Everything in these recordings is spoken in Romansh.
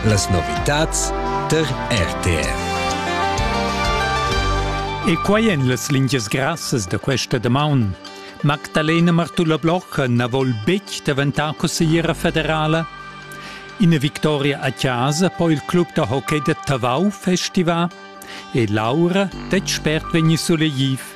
Las novitads tar RTR. E quai en las lingias grassas da questa damaun. Magdalena Martulla Blocher na vol betg daventar consigliera federala. Ina victoria a casa po il club da hockey da Tavau festivar e Laura detg spert vegni sulegliv.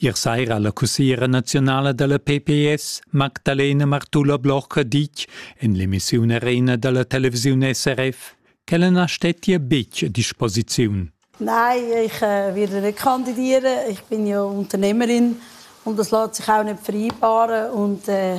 Ier saira ha la cussiera naziunala da la pps Magdalena Martula-Blocher ditg en l'emissiun Arena da la televisiun SRF ch'ella na stettia betg a disposiziun. Nein, ich äh, werde kandidieren. Ich bin ja Unternehmerin und das lässt sich auch nicht vereinbaren und äh,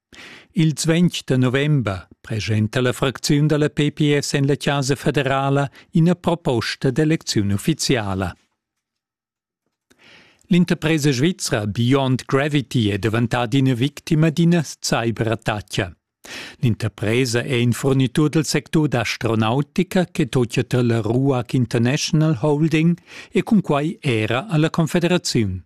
Ils ventg da november presenta la fracziun dalla PPS en la Chasa federala ina proposta d'elecziun ufficiala. L'interpresa svizra Beyond Gravity è daventata ina victima d'ina cyberattacca. L'interpresa è in furnitur del sectur d'astronautica che tocia tra la Ruag International Holding e cunquai era alla Confederaziun.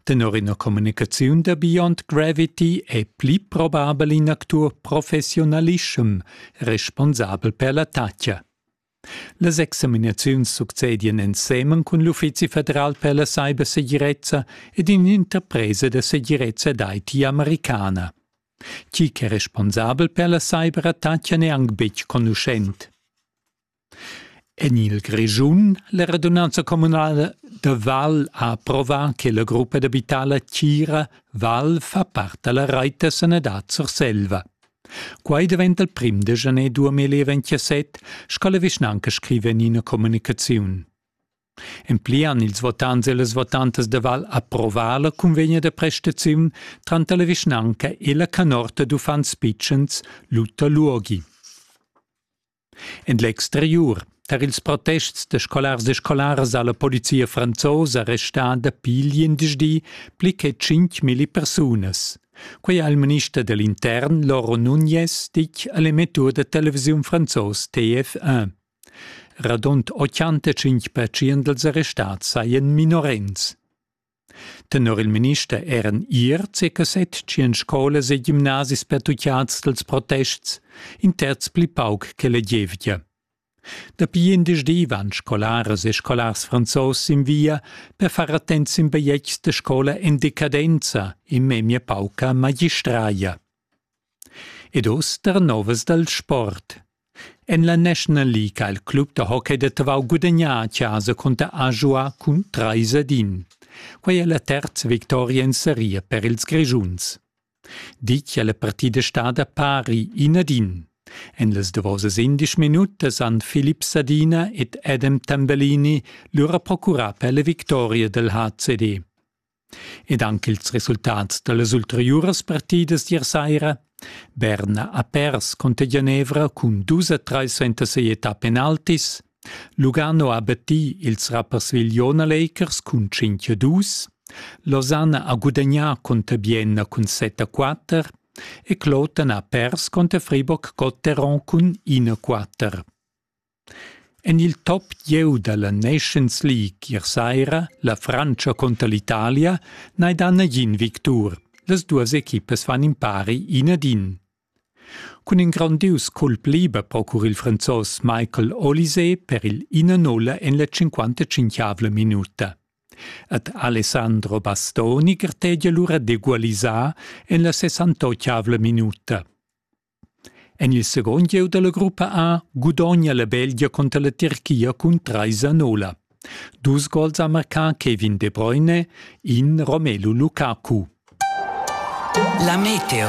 Tenor ina communicaziun da Beyond Gravity è pli probabel in actur professiunalischem responsabel per l'attacca. Las examinaziuns succedian ensemen cun l'Uffizi federal per la cybersegirezza ed in'interpresa da segirezza d'IT americana. Chi ch'è responsabel per la cyberattacca n'è anc betg conuschent. En il Grischun la radunanza communala da Val ha approvà che la gruppa d'abitala Tira Val fa part da la rait da sanadad Surselva. Quai daventa il prim da januar 2027, sco la vischnanca scriva en ina communicaziun. En pli han ils votants e las votantas da Val approvà la cunvegna da prestaziun tranter la vischnanca e la canorta d'uffants pitschens Lutta Luogi. En l'exteriur tar ils protests da scolars e scolaras ha la polizia franzosa restà dapi l'indischdi pli che tschintg milli persunas. Quei ha il minister dell intern Lauro Nunez ditg a l'emettur da televisiun franzos TF1. Radund 85 pertschient dals arrestati sajan minorens. Tenor il minister eran ier circa set tschien scolas e gimnasis pertuccads dals protests, in terz pli pauc che la gievgia. Dapi indisdi van scolaras e scolars franzos sin via per far attents sin bigliets da scola en decadenza e memia pauca magistraia. Ed uss tar novas dal sport. En la National League ha il club da hockey da Tavau gudagnà a chasa cunter Ajoa cun trais ad in. Quai è la terza victoria en seria per ils Grischuns. Ditg è la partida stada pari in ad in. En las davosas indesch minutas han Philipp Sadina ed Adam Tambellini lura procurà per la victoria dal HCD. ed anc ils resultats da las ulteriuras partidas d'ier saira. Berna ha pers cunter Genevra cun dus a trais suenter sia età penaltis. Lugano ha battì ils rappersvigliona Lakers cun 5 a 2. Lausanne ha gudagnà cunter Bienna cun 7 a 4 e Kloten ha pers cunter Fribourg Gotteron cun 1 a 4. En il top gieu da la Nations League ier saira la Frantscha cunter l'Italia n'hai dà nagin victur. Las duas equipas fan impari in ad in. Cun in grondius culp liber procura il Franzos Michael Olysée per il 1-0 en la 55 minuta. Ad Alessandro Bastoni gartegia lura d'egualisar en la 68 minuta. En il segund gieu da la gruppa A gudogna la Belgia cunter la Tirchia cun trais a nola. Dus gols ha marcà Kevin De Bruyne, in Romelu Lukaku. La Meteo